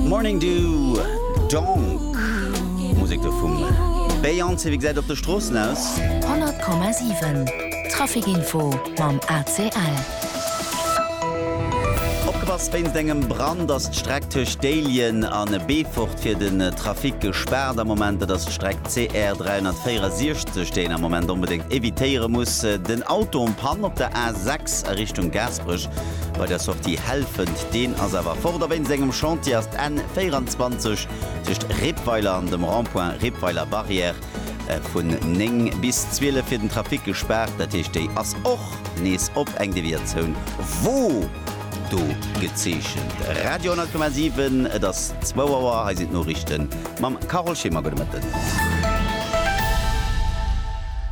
Morning Dew, Donk, Musek do vum Beyoncé. Wéi gesäit et op de Stroossen aus? 100,7 Trafikinfo mam ACL. Opgepasst, Wéinst engem Brand ass d'Streck tëscht Déiljen a Beefort fir den Trafic gespaart am Moment. Dat ass d'Streck CR 364, déi een am Moment onbedéngt evitéiere muss. Den Auto en Panne op der A6 a Richtung Gaasperech. Bei der Sortie Helfent, deen ass awer fort a wéinst engem Chantier ass d'N 24 tëscht Rippweiler an dem Rond-point Rippweiler Barrière vun 9 bis 12 fir den Trafic gespaart. Dat heescht, déi ass och nees op, eng Deviatioun wor do gezeechent. Radio 10,7, et ass zwou Auer, hei sinn d'Noriichten mam Carole Schimmer. Gudde Mëtten.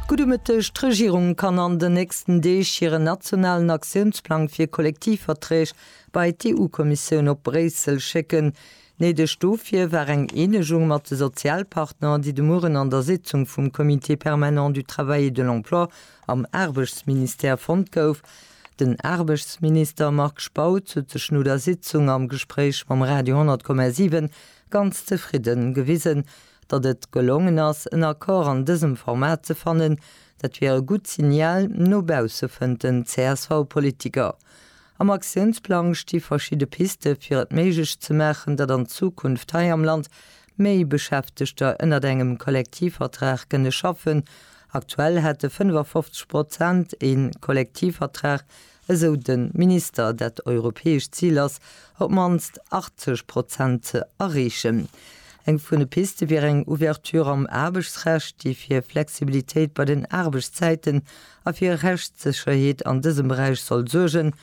Gudde Mëtteg. D'Regierung kann an den. nächsten Deeg hiren nationalen Aktiounsplang fir Kollektivverträg bei d'EU-Kommissioun op Bréissel schécken. Néideg dofir war eng Eenegung mat de Sozialpartner, déi de Mueren an der Sitzung vum Comité permanent du travail et de l'emploi am Aarbechtsministère fonnt gouf. Den Aarbechtsminister Marc Spautz huet sech no der Sitzung am Gespréich mam Radio 10,7 ganz zefridden gewisen, datt et gelongen ass, en Accord an dësem Format ze fannen, Dat wier e gutt Signal no bausse, fënnt den CSV-Politiker. Am Aktiounsplang sti verschidde Piste fir et méiglech ze maachen, datt an Zukunft hei am Land méi Beschäftegter ënnert engem Kollektivvertrag kënne schaffen. Aktuell hätte 55 Prozent ee Kollektivvertrag esou de Minister, dat europäescht Zil ass, op d'mannst 80 Prozent ze erreechen. Eng vun de Piste wier eng Ouverture am Aarbechtsrecht, déi fir Flexibilitéit bei den Aarbechtszäiten a fir Rechtssécherheet an dësem Beräich soll suergen,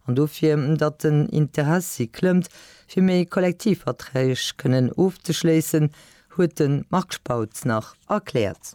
an dofir, datt den Interessi klëmmt, fir méi Kollektivverträg kënnen ofzeschléissen, huet de Marc Spautz nach erkläert.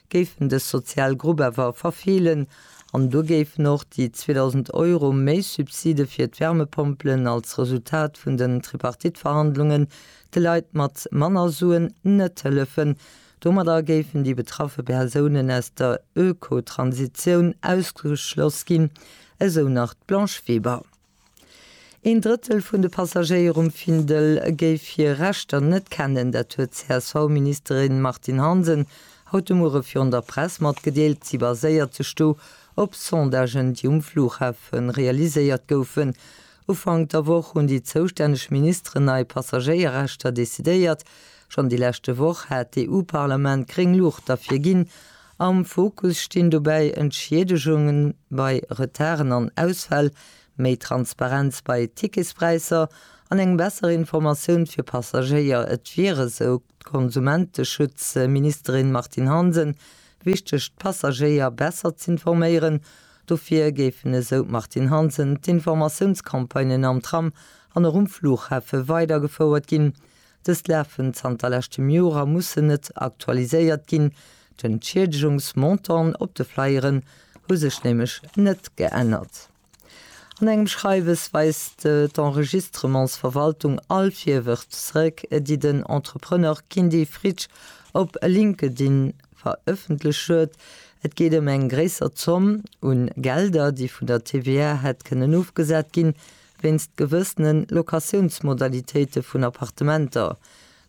géif en dës sozial Grupp awer verfeelen an do géifen och déi 2.000 Euro méi Subside fir d'Wärmepompelen als Resultat vun den Tripartite-Verhandlungen de Leit mat manner Suen net hëllefen. Domadder géifen déi betraffe Persounen aus der Ökotransitioun ausgeschloss ginn, esou nach d'Blanche Weber. Een Drëttel vun de Passagéier um Findel géif hir Rechter net kennen. Dat huet d'CSV-Ministerin Martine Hansen haut de Muere virun der Press matgedeelt. Si baséiert sech do op Sondagen, déi um Flughafe realiséiert goufen. Ufank der Woch hunn déi zoustänneg Ministeren nei Passagéierrechter decidéiert. Schonn déi leschte Woch hat d'EU-Parlament gréng Luucht derfir ginn Am Fokus stinn dobäi Entschiedegunge bei Retarden an Ausfäll, méi Transparenz bei Ticketspräisser an eng besser Informatioun fir Passagéier. Et wier, esou d'Konsumenteschutzministerin Martine Hansen, wichteg d'Passagéier besser z'informéieren. Dofir géifen, esou d'Martine Hansen, d'Informatiounscampagnen am Tram an och um Fluchhafe weidergefouert ginn. Dës lafen zanter leschtem Joer a mussen net aktualiséiert ginn. D'Entschiedegungs-Montanten op de Flyeren hu sech nämlech net geännert. An engem Schreiwes weist d'Enregistrementsverwaltung all Virwërf zeréck, déi den Entrepreneur Kindy Fritsch op LinkedIn verëffentlecht huet. Et geet ëm eng gréisser Zomm un Gelder, déi vun der TVA hätt kënnen ofgesat ginn, Wéinst gewëssene Locatiounsmodalitéite vun Appartementer.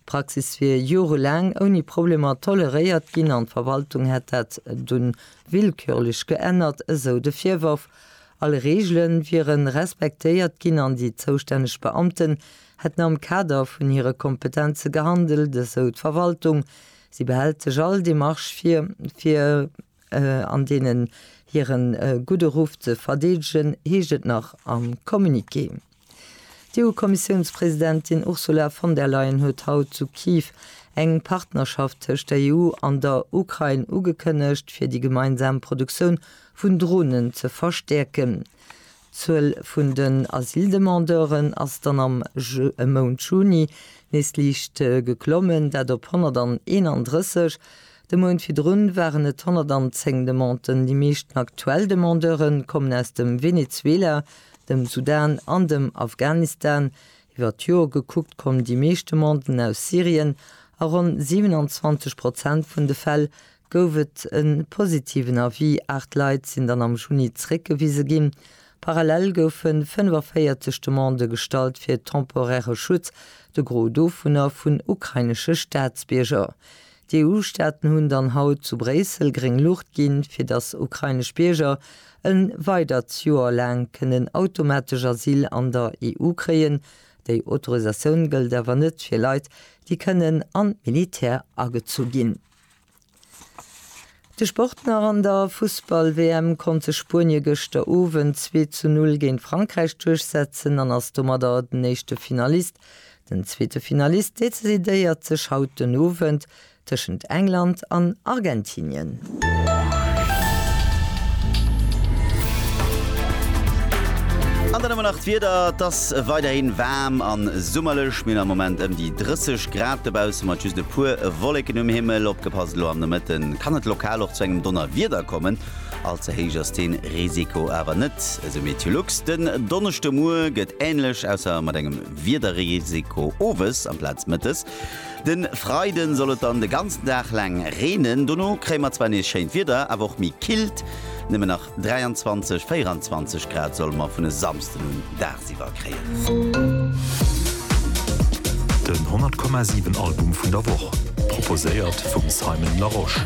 D'Praxis wier jorelaang ouni Problemer toleréiert ginn an d'Verwaltung hätt dat dunn willkürlech geännert, esou de Virworf. All Reegele wiere respektéiert ginn an déi zoustänneg Beamten hätten am Kader vun hire Kompetenze gehandelt, esou d'Verwaltung. Si behält sech all Demarche vir, fir an deenen hire gudde Ruff ze verdeedegen, heescht et nach am Communiqué. D'EU-Kommissiounspresidentin Ursula von der Leyen huet haut zu Kiew eng Partnerschaft tëscht der EU an der Ukrain ugekënnegt, fir déi gemeinsam Produktioun vun Dronen ze verstäerken. D'Zuel vun den Asyldemandeuren ass dann am Mount Juni nees liicht geklommen, dat op 131. De Mount virdrun waren et 110 Demanden. Déi meeschten aktuell Demandeure kommen aus dem Venezuela, dem Sudan an dem Afghanistan. Iwwer d'Joer gekuckt kommen déi meescht Demanden aus Syrien, a ronn 27 Prozent vun de Fäll gouf et e positiven Avis, aacht Leit sinn dann am Juni zeréckgewise ginn. Parallel goufe 45 Demandë gestallt fir temporäre Schutz, de Gros dovunner vun ukrainesche Staatsbierger. D'EU-Staaten hunn dann haut zu Bréissel gréng Luucht ginn, fir datt ukrainesch Bierger e weidert Joer laang kënnen automatesch Asyl an der EU kréien. Déi Autorisatioun gëllt awer net fir Leit, déi kënnen an d'Militär agezu ginn. De Sport nach, An der Fussball-WM konnt sech Spuenie gëschter Owend zwee zu null géint Frankräich duerchsetzen an ass domadder den éischte Finalist. Den zweete Finalist decidéiert sech haut den Owend tëschent England an Argentinien. An dann ëmmer nach d'Wieder, Et ass weiderhi waarm a summerlech, mir hunn am Moment ëm déi 30. Grad dobausse mat just e puer Wolleken um Himmel. Opgepasst, elo am Nomëtte kann et lokal och zu engem Donnerwieder kommen. All ze héich ass dee Risiko awer net, esou Meteolux. Den Donneschdemoie gëtt änlech, ausser mat engem Wiederrisiko owes amplaz mëttes. De Freide soll et dann de ganzen Dag laang reenen, dono kréie mer zwar nees schéint Wieder, awer och méi killt. 23, 24 Grad solle mer vun e Samsden un dagsiwwer kréien. Den 100,7 Album vun der Woch, proposéiert vum Simon Larosche.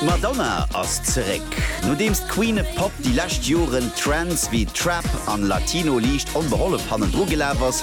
D'Madonna ass zeréck. Nodeems d'Queen of Pop déi lescht Joren Trends wéi Trap an Latino liicht onbehollef hannendru gelaf ass,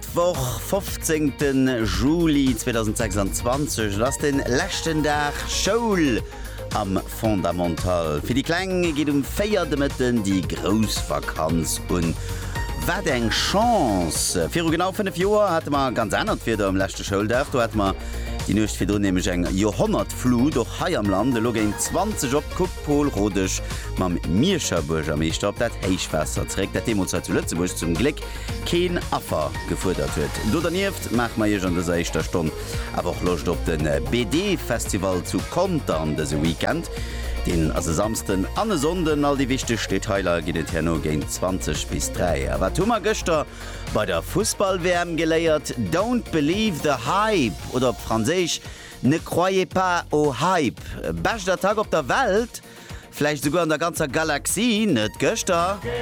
D'Woch 15 de Juli 2026, et ass den leschten Dag Schoul am Fondamental. Fir déi Kleng geet um 4 de Mëtten déi grouss Vakanz un. Wat eng Chance! Viru genau 5 Joer hate mer ganz anert Wieder um leschte Schouldag. Do hate mer déi Nuecht virdrun nämlech eng Joerhonnertflut, och hei am Land. Elo géint 20 op kuckt Paul Rodesch mam Mierscher Buergermeeschter op dat Héichwaasser zeréck, dat deemools hei zu Lëtzebuerg zum Gléck keen Affer gefuerdert huet. Do dernieft maache mer Iech an dëser éischter Stonn awer och Loscht op de BD Festival zu Contern dëse Weekend. Deen ass e Samsden an e Sonnden. All déi wichteg Detailer ginn et herno géint 20 bis 3. A wat hu mer gëschter bei der Fussball-WM geléiert? Don't believe the hype oder op Franséisch Ne croyez pas au hype. Bescht Attack op der Welt, vläicht esouguer an der ganzer Galaxie, net gëschter.